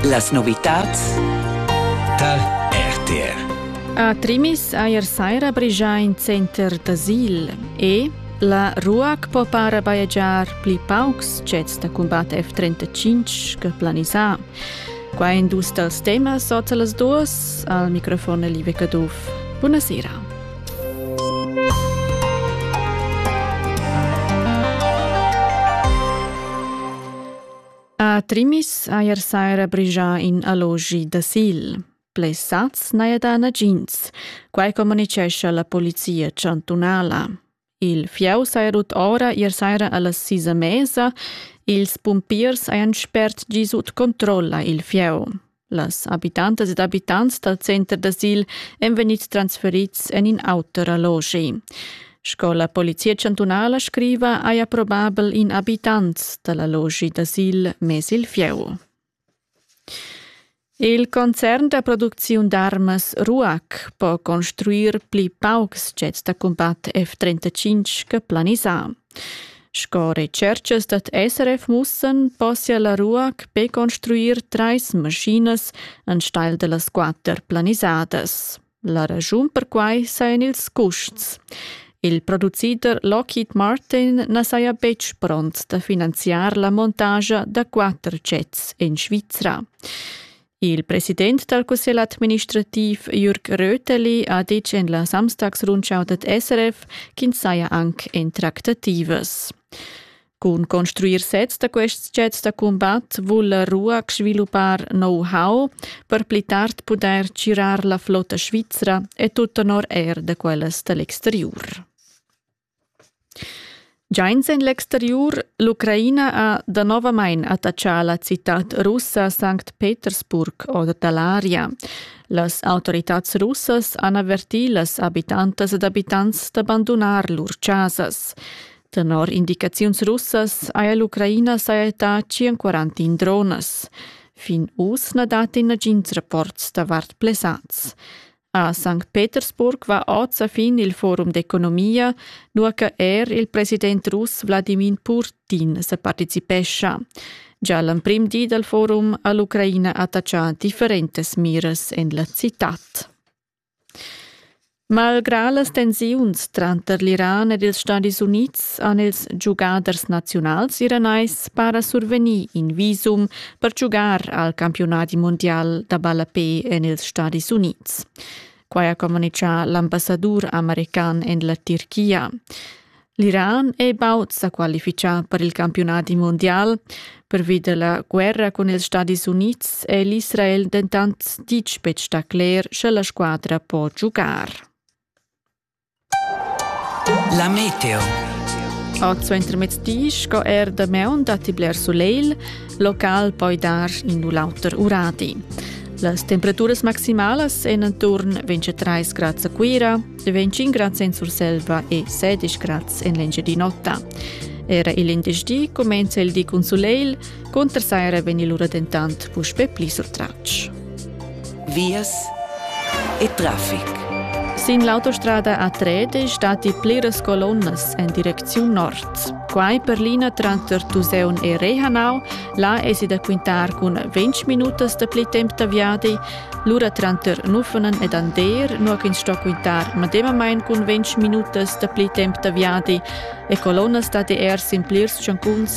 Las novitads tar RTR. A Trimis eir saira brigia in center d'asil e la RUAC po para bajegiar pli paucs cets da combat F-35 che planisà. Qua in dus dals temas ota las duos al microfon Live Caduff. Buonasera. A Trimis haja saira brigià in allogi d'asil. Blers sats n'haja dà nagins, quai communitgescha la polizia chantunala. Il fieu saja rut ora ier saira a las sis e mesa. Ils pumpiers hajan spert giu sut controlla il fieu. Las habitantas ed abitants dal center d'asil èn vegnids transferids en in auter allogi. Sco la polizia chantunala scriva, haja probabel in abitant da l'allogi d'asil mess il fieu. Il concern da producziun d'armas RUAC po construir pli paucs jets da cumbat F-35 che planisà. Sco retscherchas dad SRF mussan possia la RUAC be construir trais maschinas enstagl da las quatter planisadas. La raschun per quai sajan ils custs. Il producider Lockheed Martin na saja betg pront da finanziar la montagia da quatter jets en Svizra. Il president dal cussegl administrativ Jürg Röteli ha ditg en la Samstagsrundschau dad SRF ch'ins saja anc en tractativas. Cun construir sezs da quests jets da cumbat vul la RUAC sviluppar know-how per pli tard pudair tgirar la flotta svizra e tut tenor er da quellas da l'exteriur. Giains en l'exteriur, l'Ucraina ha danovamain attatgà la citad russa Sankt Petersburg or da l'aria. Las autoritads russas han avertì las abitantas ed abitants da bandunar lur chasas. Tenor indicaziuns russas haja l'Ucraina sajettà 141 dronas. Fin uss na dat nagins rapports davart plesads. A Sankt Petersburg va oz a fin il forum d'economia, nua che er il president russ Wladimir Putin sa participescha. Già l'emprim di dal forum ha l'Ucraina attachà differentas miras en la citad. Malgrà las tensiuns tranter l'Iran ed ils Stadis Unids han ils giugaders naziunals iranais para survegnì in visum per giugar al campiunadi mundial da ballapè en ils Stadis Unids. Quai ha communitgà l'ambassadur american en la Tirchia. L'Iran è baud sa qualifichà per il campiunadi mondial. Pervi da la guerra cun ils Stadis Unids è l'Israel dentant ditg betg da cler, sche la squadra può giugar. La meteo. A suentermezzdi sco er damaun datti bler sulegl, local poi dar in u l'auter uradi. Las temperaturas maximalas èn intorno 23 grads a Cuira, 25 grads en Surselva e 16 grads en l'Engiadin'Ota. Era il venerdì comincia il di cun sulegl, Cunter saja era vegnì lura dentant puspè pli surtratg. Vias e traffic. Sin l'autostrada A3 stati pliras colonnas en direcziun nord. Quai per l'ina tranter Tuseun e Rehanau, là esi da quintar cun 20 minutas da pli temp da viadi, lura tranter Nuffenen ed Ander, nua ch'ins sto quintar medemamain cun 20 minutas da pli temp da viadi e colonnas dad er sin plirs tschancuns